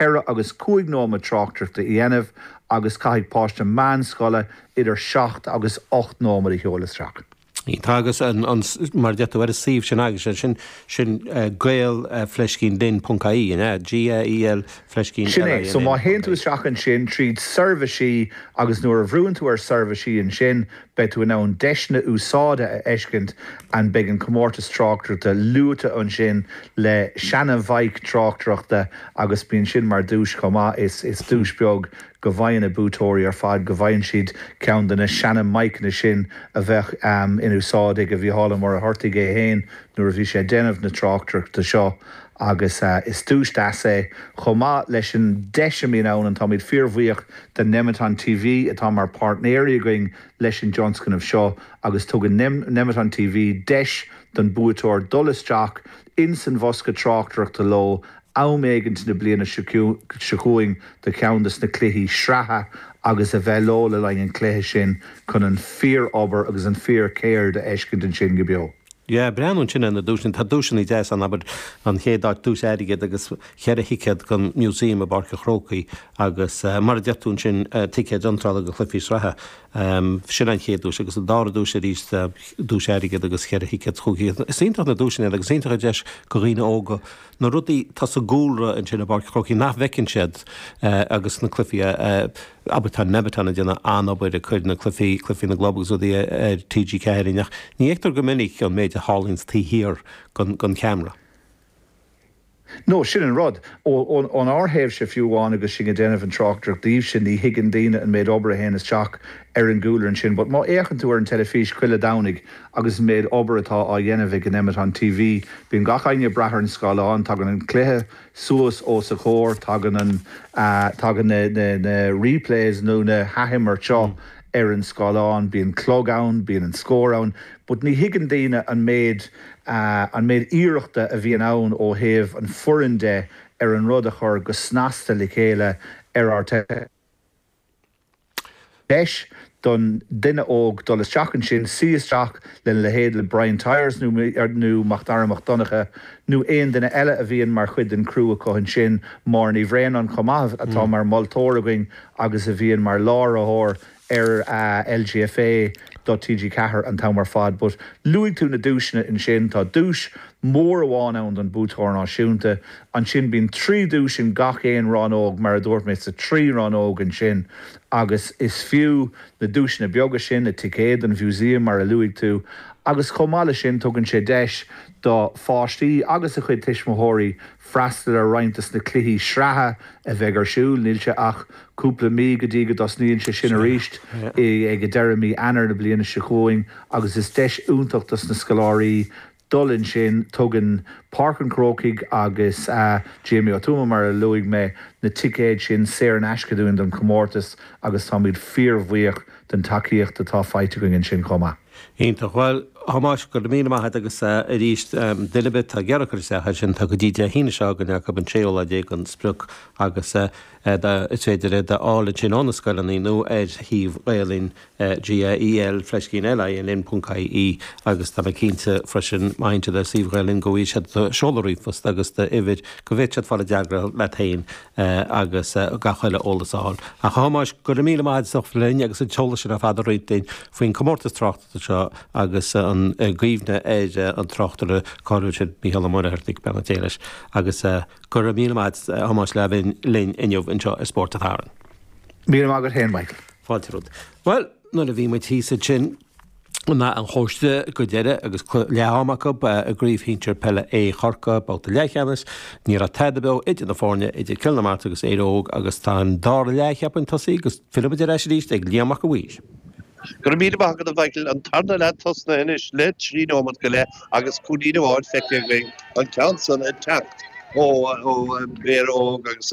ceithre agus cúig nóiméad tráchtaireachta a dhéanamh agus caithfidh páiste meánscoile idir seacht agus ocht nóiméad a sheoladh isteach. Tá agus mar a deir tú ar an suíomh sin agat, sin sin gael fleiscín linn ponc ie, an ea? G-a-e-l fleiscín Sin é, so má théann tú l-i-n-n. isteach ansin tríd Seirbhísí agus nuair a bhrúnn tú ar Seirbhísí ansin, Beidh tú in ann deiseanna úsáide a fheiscint and beidh an comórtas tráchtaireachta luaite ansin le seana-mhaidhc tráchtaireachta agus bíonn sin mar duais chomh maith. Is duais beag go bhfaigheann na buaiteoirí ar fad, go bhfaigheann siad ceann de na seana-mhaidhceanna sin a bheadh in úsáid ag Mícheál Ó Muircheartaigh é féin nuair a bhí sé ag déanamh na tráchtaireachta seo. agus is duais deas é, chomh maith leis an deis a bhíonn ann and táimid fíorbhuíoch de Nemeton TV atá mar páirtnéirí againn leis an dtionscnamh seo agus tugann Nemeton TV deis don buaiteoir dul isteach ins an bhosca tráchtaireachta leo am éigint na bliana seo chugainn do cheann de na cluichí sraithe agus a bheith leo le linn an chluiche sin chun an fíor-obair agus an fíor-cheird a fheiscint ansin go beo. Ag breathnú ansin ar na duaiseanna, tá duaiseanna deasa ann, abair an chéad áit, duais airgid agus cheithre thicéad don Museum i bPáirc an Chrócaigh agus mar a deir tú ansin, ticéid iontrála go Cluichí Sraithe. Sin an chéad duais agus an dara duais arís, duais airgid agus cheithre thicéad chuici. Is iontach na duaiseanna iad agus is iontach an deis do dhaoine óga na rudaí atá sa gcúlra ansin i bPáirc an Chrócaigh nach bhfeiceann siad agus na cluichí a Abair tá Nemeton ag déanamh an-obair ag cur na cluifí, Cluifí na gClub agus rudaí ar TG4 ach ní fheictear go minic an méid a tharlaíonn taobh thiar den cheamra. No, sin an rud. Ón ár thaobhse fiú amháin agus sinn ag déanamh an tráchtaireacht daoibhse, ní thuigeann daoine an méid obair a théann isteach ar an gcúlra ansin but má fhéachann tú ar an teilifís chuile Dhomhnaigh agus an méid obair atá á dhéanamh ag Nemeton TV, bíonn gach éinne ag breathnú ar an scáileán, tagann an cluiche, Suas os ár gcomhair, tagann na, tagann na replays nó na hathimirt seo ar an scáileán. Bíonn clog ann, bíonn an scór ann, but ní thuigeann daoine an méid, an méid iarrachta a bhíonn ann ó thaobh an foireann de ar an rud a chur go snasta le chéile ar rte. deis don duine óg dul isteach ansin, suí isteach lena leithéid le Brian Tyers nó Mac Dara Mac Donncha nó aon duine eile a bhíonn mar chuid den chriú acu ansin, Máire Ní Bhraonáin chomh maith atá mar mholtóir againn agus a bhíonn mar láithreoir ar an LGFA do TG4 an t-am ar fad. But luaigh tú na duaiseanna ansin, tá duais mór amháin ann don Bhuaiteoir Náisiúnta. Ansin bíonn trí dhuais in gach aon rannóg, mar a dúirt mé, sa trí rannóg ansin, agus is fiú na duaiseanna beaga sin, na ticéid don Mhúsaem, mar a luaigh tú, agus chomh maith leis sin, tugann sé deis do pháistí agus a gcuid tuismitheoirí freastal ar roinnt dos na cluichí sraithe a bheidh ar siúl, níl sé ach cúpla mí go dtí go dtosnaíonn sé sin arís, ag deireadh mí Eanáir na bliana seo chugainn, agus is deis iontach dos na scoláirí dul ansin, tugann Páirc an Chrócaigh agus Jamie Ó Tuama, mar a luaigh mé, na ticéid sin saor in aisce dúinn don chomórtas agus táimid fíorbhuíoch den tacaíocht atá faighte againn ansin chomh maith. Iontach. Bhuel, a Thomáis, go raibh míle maith agat agus arís, duine ar bith atá ag iarraidh cur isteach air sin, tá go dtí Dé hAoine seo chugainn acu, an séú lá déag an sprioc, agus is féidir é d'fháil ansin ó na scoileanna nó ar shuíomh Ghael-Linn. GAEL fleiscín LINN ponc IE agus tá mé cinnte freisin má théann siad ar suíomh Ghael Linn go bhfaighidh siad seoladh ríomhphost agus d'uimhir go bhféadfadh siad fáil i dteagmháil leat féin agus gach uile eolas a fháil. Ach a Thomáis, go raibh míle maith agat linn agus an t-eolas sin ar fad a roinnt linn faoin chomórtas tráchta seo agus i gcuimhne ar an tráchtaire cáiliúil sin Mícheál Ó Muircheartaigh, beannacht Dé leis, agus go raibh míle maith agat a Thomáis le bheith linn inniu anseo ar Spórt an tSathairn. Míle maith agat féin Michael. Fáilte romhat. Bhuel, nuair a bhí muid thíos ansin in Áth an Chóiste go deireadh agus leath-am acu i gCraobh Shinsir Peile A Chorcaí, babhta leathcheannais, ní raibh tada beo idir na foirne, idir Cill na Martra agus Éire Óg agus tá an dara leath, cheapfainn, tosaithe agus fillfidh muid ar ais arís ag Liam Mac a' Mhaoir. Go raibh míle maith agat a Mhichael. An tarna leath tosnaithe anois le trí nóimeat go leith agus cúilín amháin feicthe againn, an ceann san ag teacht ó Éire Óg agus